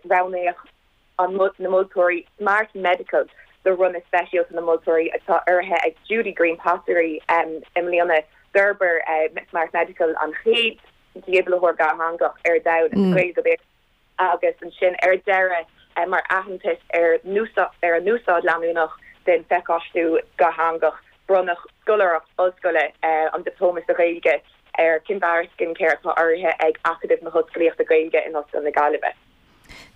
roghnaigh na moltóirí Smart Medical do bhronnadh speisialta na moltóirí atá urraithe ag Judy Greene Pottery I mbliana d'fhorbair Smart Medical an chéad dífhibrileoir dhátheangach ar domhan, as Gaeilge go Béarla, agus ansin ar deireadh mar aitheantas ar a n-úsáid leanúnach den phacáistiú dhátheangach bronnadh scoláireacht ollscoile, an Dioplóma sa Ghaeilge, ar Kinvara Skincare, atá urraithe ag Acadamh na hOllscolaíochta Gaeilge in Ollscoil na Gaillimhe.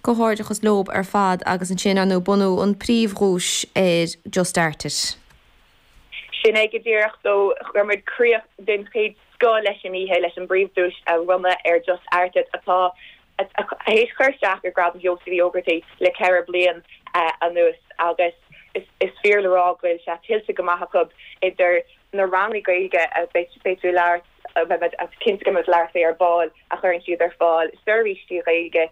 Comhghairdeachas leob ar fad agus ansin ar ndú bronnadh an príomhdhuais ar Just Art It. Sin é go díreach, so chuir muid críoch den chéad scoth leis an oíche leis an bpríomhdhuais a bhronnadh ar Just Art It atá Tar éis cur isteach ar Ghradam Sheosaimh Uí Ógartaigh le ceithre bliain anuas agus is fíor le rá go bhfuil sé tuillte go maith acu, idir na ranganna Gaeilge a mbeidh tú ag labhairt cinnte go mbeidh muid ag labhairt air ar ball a chuireann siad ar fáil, seirbhísí Gaeilge,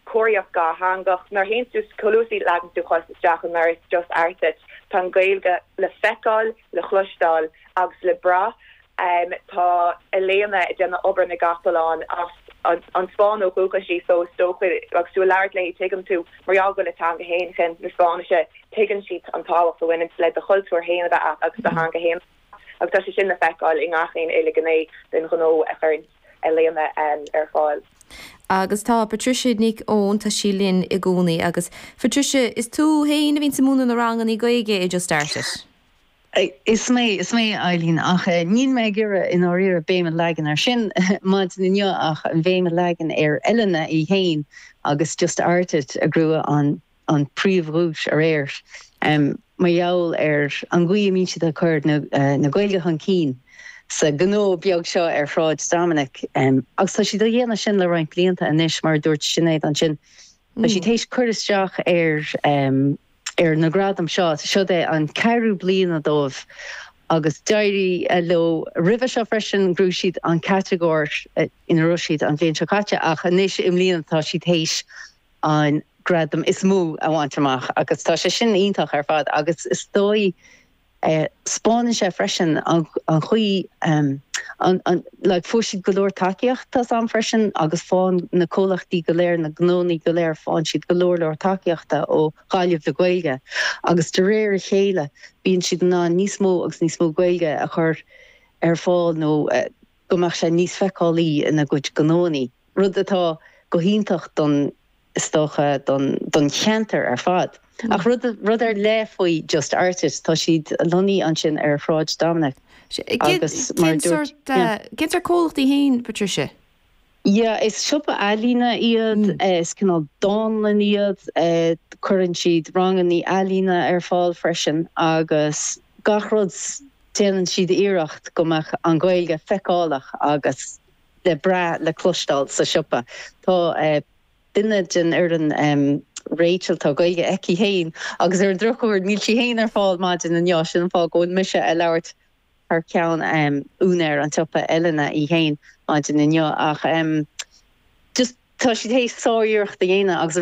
comharthaíocht dhátheangach, nuair a shiúlann tú, chomh luath is a leagann tú do chos isteach i ndoras Just Art It, tá an Ghaeilge le feiceáil, le chloisteáil agus le brath. Em, tá Elena ag déanamh obair na gcapall ann, as an, an Spáinn ó dhúchas í, so is dócha, agus tú ag labhairt léi tuigeann tú, mar gheall go bhfuil a teanga fhéin, teanga na Spáinnise, tuigeann sí an tábhacht a bhaineanns le do chultúr fhéin a bheith a't agus do theanga fhéin a bheith a't agus tá sé sin le feiceáil i ngach aon uile ghné den ghnó a chuireanns Elena, em, ar fáil. Agus tá Patricia Nic Eoin, tá sí linn i gcónaí agus Patricia, is tú fhéin a bhíonns ag múineadh na rangannaí Gaeilge i Just Art It? Is mé, is mé Eileen, ach níl mé ag iarraidh i ndáiríre béim a leagan air sin maidin inniu ach an bhéim a leagan ar Elena í fhéin agus Just Art It a ghnóthaigh an príomhdhuais aréir mar gheall ar an gcaoi a mbíonn siad ag cur na Gaeilge chun cinn sa ghnó beag seo ar Shráid Dominic agus tá siad á dhéanamh sin le roinnt blianta anois mar a dúirt Sinéad ansin tá siad théis cur isteach ar ar na gradaim seo. Siod é an ceathrú bliana dóibh agus d'éirigh leo roimhe seo freisin. Ghnóthaigh siad an catagóir ina raibh siad an bhliain seo caite ach anois i mbliana tá siad théis an gradam is mó a bhaint amach agus tá sé sin iontach ar fad agus is dóigh Spáineann sé freisin an chaoi a fuair siad go leor tacaíochta as am freisin agus faigheann na comhlachtaí go léir, na gnónna go léir, faigheann siad go leor leor tacaíochta ó Ghaillimh le Gaeilge agus de réir a chéile bíonn siad in ann níos mó agus níos mó Gaeilge a chur ar fáil nó, go mbeadh sé níos feiceálaí ina gcuid gnóannaí, rud atá go hiontach don, is dócha, don, don cheantar ar fad. Ach rud, rud ar leith faoi Just Art It, tá siad lonnaithe ansin ar Shráid Dominic agus mar a dúirt, yeah. Cén sórt comhlacht é fhéin, Patricia? Yeah, is siopa ealaíne iad, is cineál dánlann iad, cuireann siad ranganna í ealaíne ar fáil freisin agus gach rud, déanann siad iarracht go mbeadh an Ghaeilge feiceálach agus le brath, le cloisteáil sa siopa. Tá duine den fhoireann, Rachel, tá Gaeilge aici féin agus ar an drochuair níl sí féin ar fáil maidin inniu agus sin an fáth go bhfuil mise a' labhairt thar ceann úinéir an tsiopa Elena í féin maidin inniu ach just tá siad théis sár-iarracht a dhéanamh agus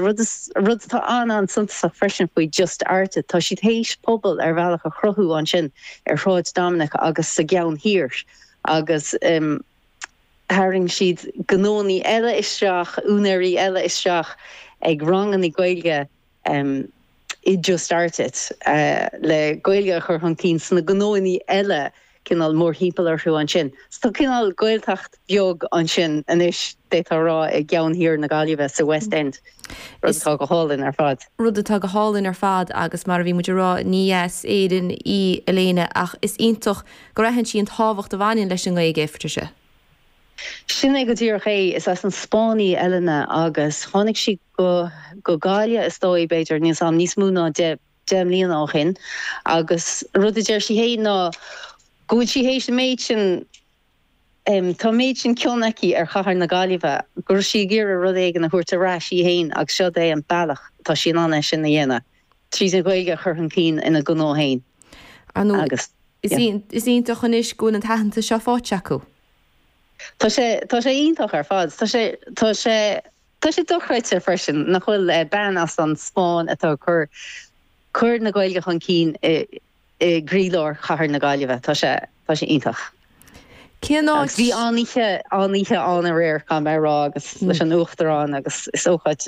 rud atá an-an-suntasach freisin faoi Just Arte tá siad théis pobal ar bhealach a chruthú ansin ar Shráid Dominic agus sa gCeann Thiar agus tharraing siad gnónaí eile isteach, úinéirí eile isteach ag rangannaí Gaeilge um i dtús báire le Gaeilge a chur chun cinn sna gnónaí eile cineál mórthimpeall orthu ansin. So tá cineál Gaeltacht bheag ansin anois, d'fhéadfá a rá, i gceann thiar na Gaillimhe, sa West End, rud atá go hálainn ar fad. Rud atá go hálainn ar fad agus mar a bhí muid ag rá, ní as Éirinn í Elena ach is iontach go n-aithníonn sí an tábhacht a bhaineann leis an nGaeilge, Patricia. Sin é go díreach é. Is as an Spáinn í Elena agus tháinig sí go go Gaillimh is dóigh, b'fhéidir, níl 's agam, níos mó ná deich, deich mbliana ó shin agus an rud a deir sí féin ná go bhfuil sí théis an méid sin, em, tá an méid sin cion aici ar chathair na Gaillimhe go raibh sí ag iarraidh rud éigin a thabhairt ar ais í féin agus seod é an bealach atá sí in ann é sin a dhéanamh, tríd an Ghaeilge a chur chun cinn ina gnó féin. Agus is iontach anois go bhfuil an t-aitheantas seo faighte acu. Tá sé, tá sé iontach ar fad. Tá sé, tá sé, tá sé dochreidte freisin nach bhfuil, bean as an Spáinn atá ag cur, cur na Gaeilge chun cinn i, i gcroílár chathair na Gaillimhe. Tá sé, tá sé iontach. Cén áit? Agus bhí an-oíche, an-oíche ann aréir, caithfidh mé a rá, agus leis an Uachtarán agus is ócáid.